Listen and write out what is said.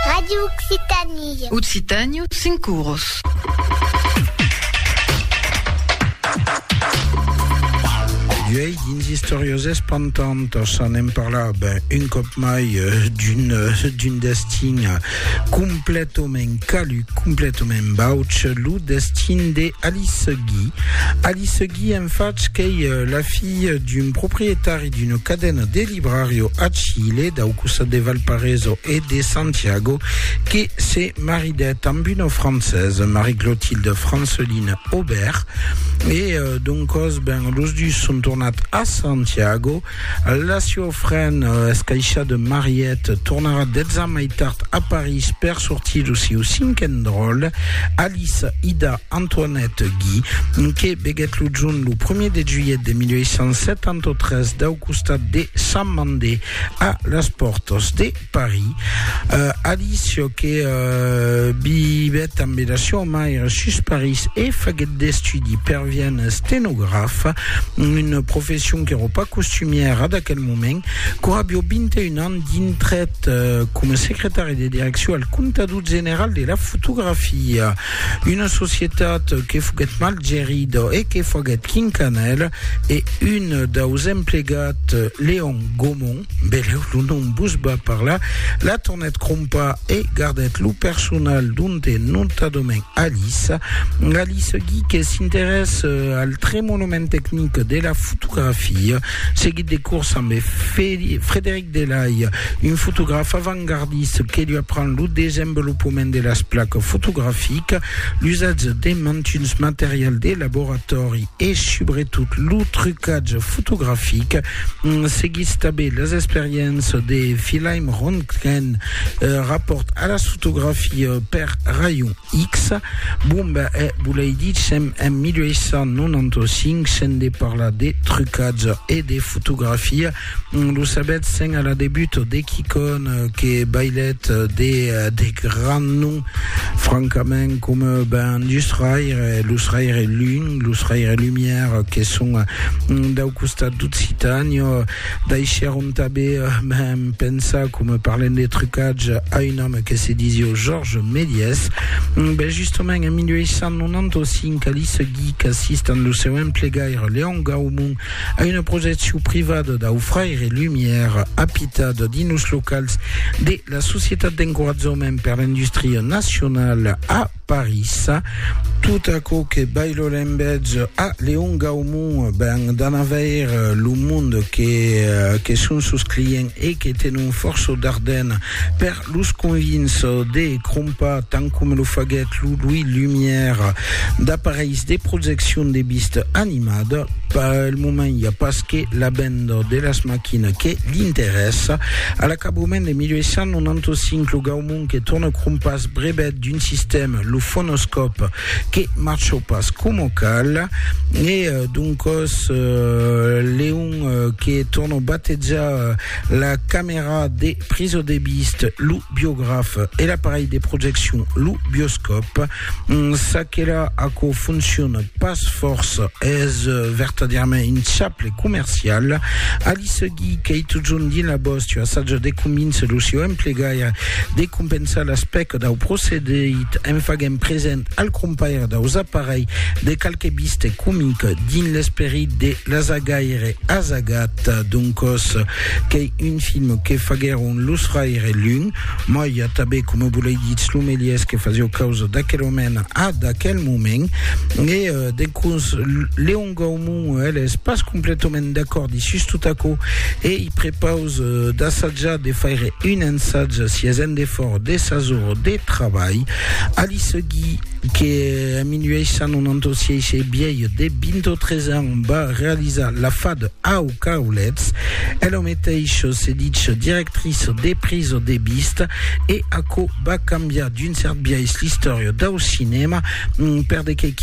Radio Occitanie. Occitània, cinc cours. Uèi, dins Istorios Espantantos, anem parlar ben, un cop mai euh, d'un euh, d'un destin euh, completament calu, completament bauch, lo destin de Alice Guy. Alice Guy, en faig, qu'ei euh, la fille d'un proprietari d'una cadena de librario a Chile, dau costat de Valparaíso e de Santiago, que se maridèt amb una francesa, Marie-Clotilde Franceline Aubert, e doncòs, ben, los dus son tornat a Santiago. La siofren escaisha de Mariette tornarà dètz ans mai tard a París per sortir lo sieu cinquen dròlle, Alice Ida Antoinette Guy, que veguèt lo junh lo primièr de julhet de 1873 dau costat de Sant Mandé a las pòrtas de Paris. Alice, que vivèt ambe la siua maire sus Paris e faguèt d'estudi per vièn estenograf, una profession qu'èra pas costumièra d'aquel moment, qu'aurà biò 21 ans dintrèt coma secretari de direccion al Comptador General de la Fotografia. Una societat que foguèt mal gerida e que faguèt quincanèl e un daus emplegat, Leon Gaumont, beleu lo nom vos va parlar, la tornèt crompar e gardèt lo personal donte notadament Alice. Alice Guy que s'interès al tremolament tecnic de la fotografia, seguit de curs ambe Frederic Delay, un fotograf avantgardist que li apren lo desenvolopament de las placas fotograficas, l'usatge de mantuns materials de laboratòri e subretot lo trucatge fotografic. Seguís tanben las experiéncias de Wilhelm Röntgen, rapòrt a las fotografia per rayon X. Bomba e volei dicem en 1895 se'n de parlar de trucatge e de fotografia. Lo sabètz sent a la debut de quicòm que bailèt de de grand nom francament coma ben dus raire, lo raire lun, lo raire lumière que son dau costat d'Occitània daishèron tanben ben pensar coma parlènt de trucatge a un òme que se disiá Georges Méliès. Ben justament en 1895 a l'i seguic assistant lo seu emplegaire Léon Gaumont A una projeccion privada dau fraire Lumière, apitat dins los locals de la Societat d'encoratjament per l'industria nacionala a París, tot aquò que Bailo l'envètz a Léon Gaumont ben d'an avair lo monde que son sos clients e que tenon fòrça darden per Los convints de crompar, tant coma lo faguèt lo Louis Lumière, d'apareis de projeccion de vista animada. Pel moment i a pas que la venda de las maquinas que l'interèssa. A l'acabament de 1895, lo Gaumont que torna crompàs brevèt d'un sistèma, lo fonoscòp, que marchó pas coma cal e doncòs Leon que torna batejar La camèra de priso de vist, lo biograf e l'aparelh de projeccion, lo bioscòp. Mm, ça que là, aquò fonciona pas fòrça. Es vertadièrament un chaple comercial. Ali Segui, qu'ei totjorn dins la bòstia, assatja de convíncer lo sieu emplegaire de compensar l'aspècte dau procedit en faguent present al crompaire daus aparelhs de qualque biste comic dins l'esperit de l'azagaire azagat, doncòs qu'ei un film que faguèron los Raire Lun, mai tanben coma volei ditz lo melièrs que fasió causa d'aquel omèn a d'aquel moment, e dencòs Leon. Gaumont, el es pas completament d'acord i sus tot aquò, e i prepaus d'assajar de faire un ensatge si es en defòrt de sas ores de trabalh, a li seguir que en 1896 ei biaire de 23 ans va realizar la fad au Caulets, el au meteis se ditz directris de priso de vista, e aquò va cambiar d'un cèrt biais l'istòria dau cinèma, per de qué?